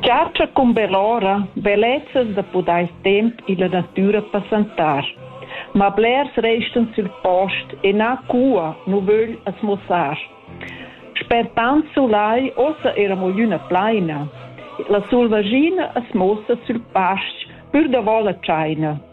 Chatscha cumbell'ora bellezzas da pudair temp illa natüra passantar. Ma blers restan sül post e na cua nu vögl as muossar. Sper tant sulai uossa eira mo glüna plaina. La sulvaschina as muossa sül pastg pür davo la tschaina.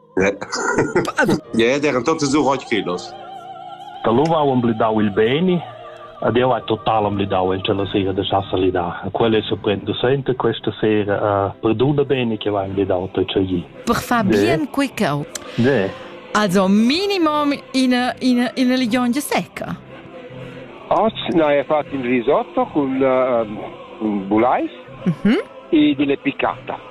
Ed eran totas uroig quellas. Dalura ho emblidau il beini ed jeu hai total emblidau en tschella sera da sa salidar. Quella è surprendusenta questa sera uh, per dunna beni che va emblidau tschegli. Per far bien quei cau. Ne. Also minimum ina ina ina ligiongia secca. Oggi no, è fatto in risotto con, uh, con bulais mm -hmm. e delle piccata.